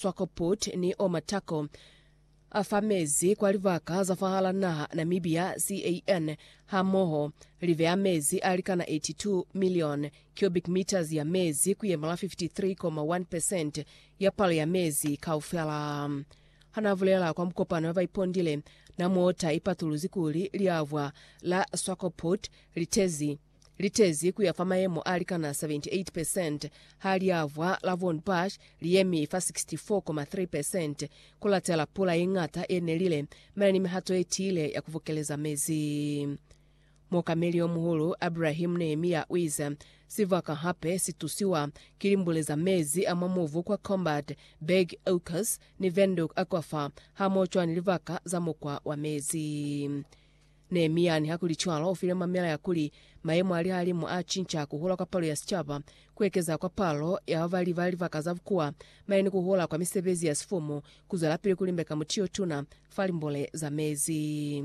Swakopmund ni Omatako a fa mezi kwa libaka za fahal'a naha Namibia, CAN, hamoho li beya mezi a likana 82 milioni cubic meters ya mezi ku yemela 53.1 percent ya palo ya mezi kaufela. Ha na bulela kwa mukopano ya ba ipondile, Namota i patuluzi kuli liavwa la Swakopmund li tezi litezi kuya fa mayemo a likana 78%, ha liavwa la Von Bush liyemi fa 64.3%. Kulatela pula yeñata yenelile, mane ni mihato yetiile ya kuvokeleza mezi. Muokameli yomuhulu Abrahim Nehemiya uize, Sibaka hape situsiwa ki limbule za mezi a mwa mubu kwa Combat, Beg Oaks, ni Venduk Aquifer, hamoho cwani libaka za mukwa wa mezi. Nehemia, nihakulicwalo, ufile mamela ya kuli, Mayemo a lihalimu a cinca, kuhula kwa palo ya sicaba, kuekeza kwa palo ya babali ba libaka za bukuwa, mane ni kuhula kwa misebezi ya sifumu, kuzwelapili kulimbeka muti yotuna fa limbole za mezi.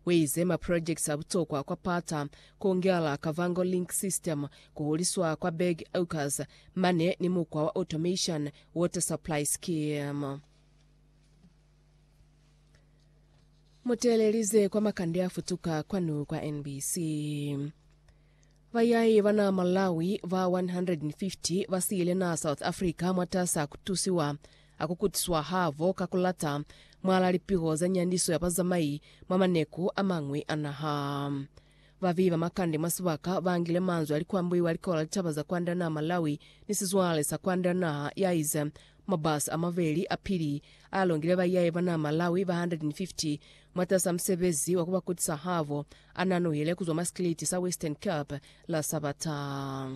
Uize, Maprojekiti a butokwa kwa Pata, kuongela Kavango Link System, kuhuliswa kwa Berg Acres, mane ni mukwa wa Automation Water Supply Scheme. Muteelelize kwa makande a futuka kwanu kwa NBC. Bayai bana Malawi ba 150 basiile na South Africa mwatasa kutusiwa akukutiswa habo ka kulata mwala lipiho za nyandiso ya bazamai mwa maneku amañwi a naha. Babeyi ba makande mwa sibaka bangile manzwi alikwambuiwa likola litaba za kwanda naha Malawi ni sizwale sa kwanda naha ya ize mwa bus amabeli apili ayalongile baiyaye ba naha Malawi ba 150 mwatasa musebezi wa kubakutisa habo ananuhile kuzwa mwa sikiliti sa Western Cape la Sabata.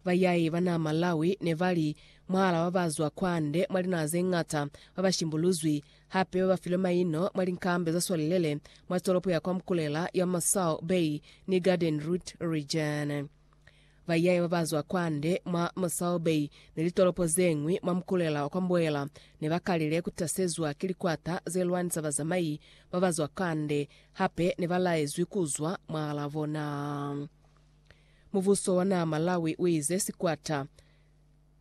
Bayai ba naa Malawi ne ba li, Mwaal'a ba ba zwa kwande mwa linaha ze ñata, ba ba shimbuluzwi, hape ba ba filwe maino mwa linkambe za swalilele mwa tolopo ya kwa Mkulela ya Masao Bay ni Garden Route Region. Bayai ba ba zwa kwande mwa Masao Bay ni litolopo ze ñwi mwa Mkulela wa kwa Mboela ne ba kalile ku tasezwa ki likwata ze lwanisa bazamai ba ba zwa kwande, hape ne ba laezwi ku zwa mwaal'a bona. Mubuso wa naha Malawi uize sikwata,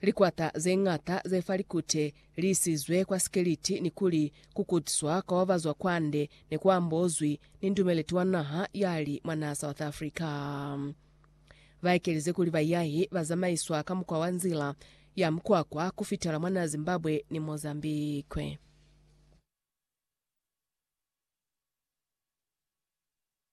likwata zeñata zefa likute liisizwe kwa sikeliti nikuli kukutswa kwa babazwa kwande nekuambozwi ni ndumeleti wa naha yali mwa naha South Africa. Baekelize kuli bayahi bazamaiswa ka mukwa wa nzila ya mukwakwa kufitela mwa naha Zimbabwe ni Mozambique.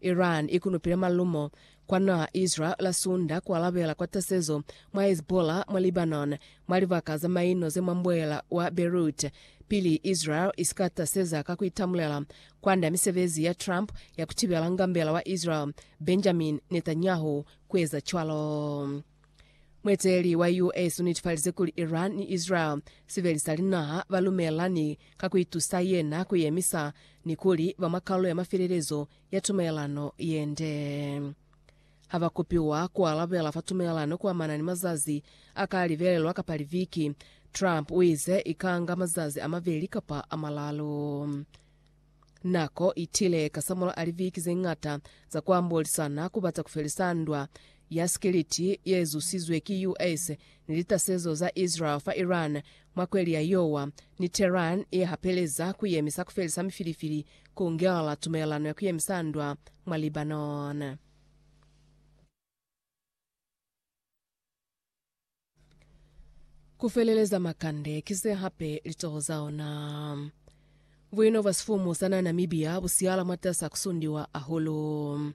Iran ikunupile malumo kwa naa Israel la Sunda kualabela kwa tasezo mwa Hezbollah mwa Lebanon mwa libaka za maino ze mwa mbuela wa Beirut, pili Israel isika taseza ka kuitamulela kwand'a misebezi ya Trump ya kutibela ngambela wa Israel, Benjamin Netanyahu, kueza cwalo. Mueteleli wa US unetifalize kuli Iran ni Israel sibeli sa linaha balumelelani ka kuitusa yena kuyemisa ni kuli ba mwa kalulo ya mafelelezo ya tumelelano yende. Haba kopiwa kualabela fa tumelelano kuamana ni mazazi aka libelelwa kapa liviki, Trump uize ikanga mazazi amabeli kapa amalalu. Nako itile kasamulaho a liviki zeñata za kuambolisana ku bata kufelisa ndwa ya sikiliti yezusizwe ki US ni litasezo za Israel fa Iran mwa kweli ya Yowa, ni Tehran yehapeleza kuyemisa kufelisa mifilifili ku ngelela tumelelano ya kuyemisa ndwa mwa Lebanon. Ku feleleza makande, ki se hape litoho za ona. Buino bwa sifumu sa na Namibia bu siala mwatasa ku sundiwa ahulu.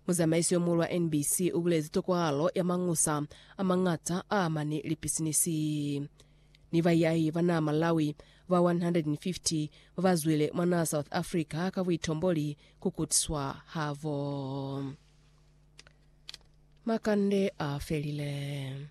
Muzamaisi yo muulu wa NBC u bulezi tokwahalo ya mangusa a mañata a amani li pisinisi. Ni baiahi ba naa Malawi ba 150 ba ba zwile mwa naa South Africa ka buitomboli ku kutiswa habo. Makande a felile.